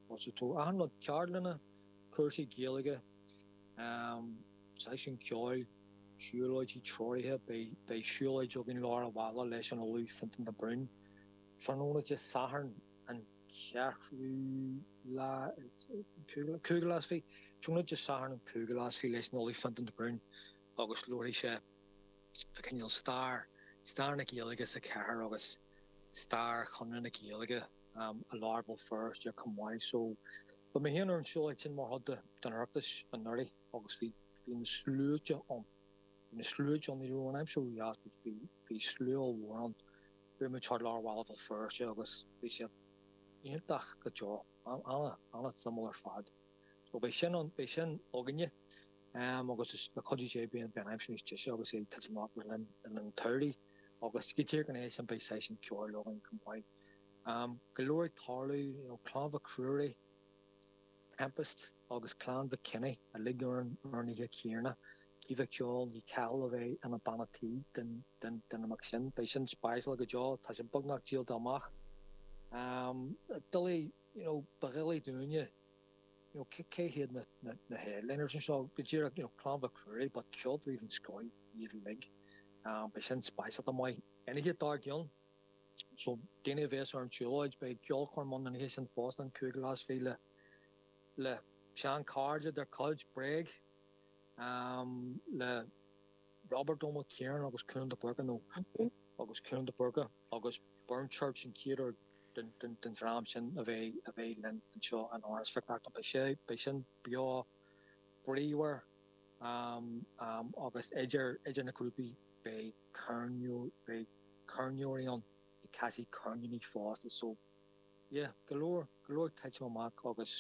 Thosaigh tú achan rud, ceardlanna, cúrsaí Gaeilge, seisiúin ceoil, siúlóidí treoraithe, beidh siúlóid againn i lár an bhaile leis an Ollamh Fintan de Brún, tráthnóna Dé Sathairn an 5ú lá is fiche, tráthnóna Dé Sathairn an 5ú lá is fiche leis an Ollamh Fintan de Brún agus labharfaidh sé fá chineál stair, stair na Gaeilge sa chathair agus stair Chonradh na Gaeilge. i lár Bhéal Feirste chomh maith so bhí mé féin ar an tsiúlóid sin mar chuid den Oireachtas anuraidh agus bhí na sluaite ann, bhí na sluaite ann, ní raibh an aimsir ró dheas ach bhí slua ollmhór ann, bhí muid thart ar lár Bhéal Feirste agus bhí sé iontach go deo, an-suimiúil ar fad. So beidh sin ann, beidh sin againne agus le cuidiú Dé beidh an aimsir níos deise agus é ag titim amach le linn an tsamhraidh agus go dtí an oíche sin beidh seisiún ceoil againn chomh maith. go leor tarlú, you know, Clann Mhic Ruairí, Tempest agus Clann Mhic Cionnaith uilig ar an aon oíche chéanna, Caoimhe agus Ceol Ní Chathail a bheith ina banna tí den imeacht sin. Beidh sin speisialta go deo, tá sé beagnach díolta amach. Doiligh, you know, ba dhoiligh dúinne, you know, cé hiad na headliners anseo? Go díreach, you know, Clann Mhic Ruairí but ceoltóirí den scoth iad uilig. Beidh sin speisialta amach. An oíche dár gcionn, So, daoine a bhéas ar an tsiúlóid, beidh ceolchoirm ann an oíche sin fosta an cúigiú lá is fiche le seanchairde dár gcuid Bréag le Robert Ó Mac Ciarnain agus Cuan de Búrca nó agus Cuan de Búrca agus Burnchurch an tríú den dream sin a bheas linn anseo in Áras Mhic Reachtain. Beidh sé, beidh sin beo bríomhar agus idir na grúpaí beidh. Ceirneoir, beidh ceirneoirí ann, ag casadh ceirníní fosta so yeah, go leor, go leor ag titim amach agus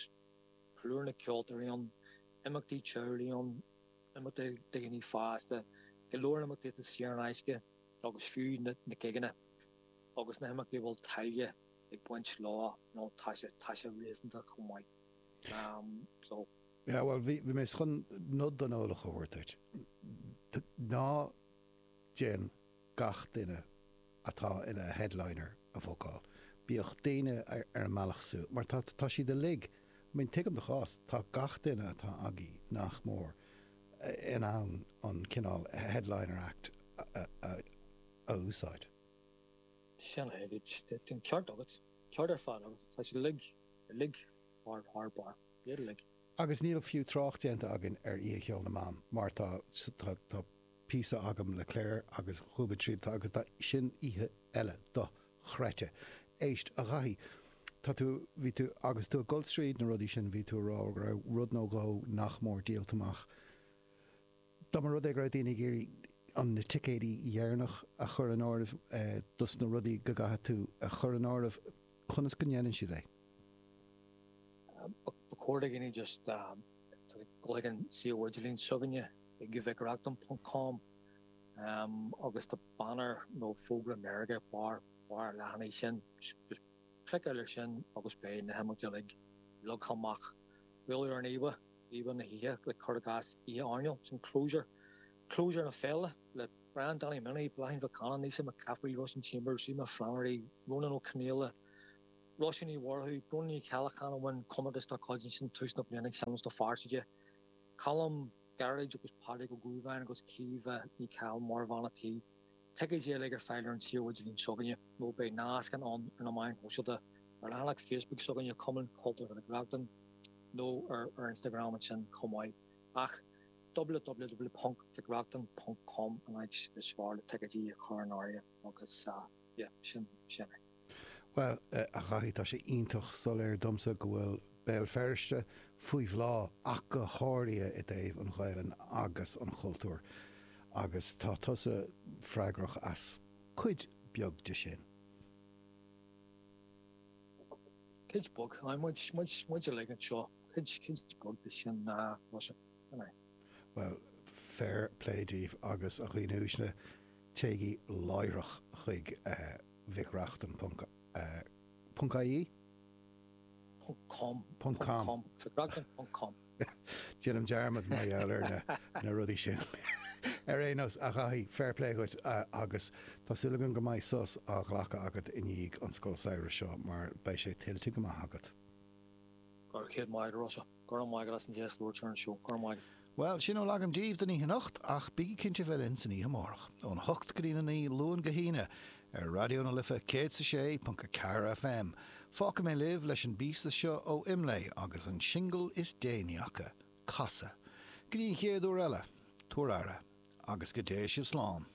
plúr na ceoltóirí ann, imeachtaí teaghlaigh ann, imeachtaí do dhaoine fásta, go leor imeachtaí atá saor in aisce agus fiú na gigeanna agus na himeachtaí a bhfuil táille ag baint leo nó tá sé, tá sé réasúnta chomh maith um so. Yeah, bhuel bhí, bhí mé chun nod don eolach a thabhairt duit. Ná Déan gach duine atá ina headliner a phiocáil. Bíodh daoine ar an mbealach siúd, mar tá, tá siad uilig, I mean, tuigim do chás, tá gach duine atá agaibh, nach mór, in ann an cineál headliner act a úsáid. Sin é, bhí an ceart agat, ceart ar fad agat, tá siad uilig, uilig thar barr, iad uilig. Agus níl fiú trácht déanta againn ar Oíche Cheoil na mBan mar tá píosa agam le Clare agus dhúbair tríd agus tá sin oíche eile dochreidte. Éist, a Dhaithí, tá tú, bhí tú, agus tú ag dul tríd na rudaí sin bhí tú a rá go raibh rud nó dhó nach mór díolta amach. Dá mba rud é go raibh daoine ag iarraidh an na ticéidí dheireanach a chur in áireamh dos na rudaí go gcaithfidh tú a chur in áireamh, conas go ndeineann siad é? Ba chóir do dhaoine just dul chuig an suíomh idirlín s'againne ag mhicreachtain ponc com agus tá banner nó fógra meirge barr an leathanaigh sin, just cliceáil ar sin agus beidh na himeachtaí uilig leagtha amach, buail ar an íomhá. Íomhá na hoíche, le cur i gcás Oíche Airneáil, sin clabhsúr, clabhsúr na féile, le Brian Danny Minnie, Bláithín Mhic Cana, Naoise McCaffrey, Róisín Chambers, Eimear Flannery, Rónán Ó Conaola, Róisín Ní Mhurchú, Bróna Ní Cheallacháin a bhain comórtas dá cuid ansin tús na bliana ag searmanas do Pháirc Uí Choilm, Gearóid agus Pádraig Ó Guagáin agus Caoimhe Ní Chathail mar bhean an tí. Ticéidí uilig ar fáil ar an suíomh idirlín s'againne nó beidh nascanna ar na meáin shóisialta, ar leathanach Facebook s'againne Cumann Cultúrtha Mhic Reachtain nó ar ar Instagram ansin chomh maith ach www.mhicreachtain.com an áit is fearr le ticéidí a chur in áirithe agus yeah sin é. Bhuel, a Dhaithí, tá sé iontach soiléir domsa go bhfuil Béal Feirste faoi bhláth, ach go háirithe i dtaobh an Ghaelainn agus an chultúir, agus tá tusa freagrach as cuid bheag de sin. Cuid bheag? Aye, muid, muid, muid uilig anseo, cuid, cuid bheag de sin, ná fusa, an ea? Bhuel, fair play daoibh, agus a dhaoine uaisle, téigí láithreach chuig eh. mhicreachtain.ie..com..com..com. Déanaim dearmad mar gheall ar na rudaí sin. Ar aon nós, a Dhaithí, fair play dhuit agus tá súil agam go mbeidh sos á ghlacadh agat i ndiaidh an scoil samhraidh seo mar beidh sé tuillte go maith agat. Go raibh céad míle agat Rosa. Go raibh maith agat as an deis labhairt ar an seó. Go raibh maith agat. Bhuel, sin a bhfuil agam daoibh don oíche anocht, ach bígí cinnte bheith linn san oíche amárach, óna hocht go dtína naoi, Luan go hAoine, ar Raidió na Life 106.4 FM. Fágfaidh mé libh leis an bpíosa seo ó Imlé, agus an singil is déanaí acu, Casadh. Go dtí an chéad uair eile, tabhair aire, agus go dté sibh slán.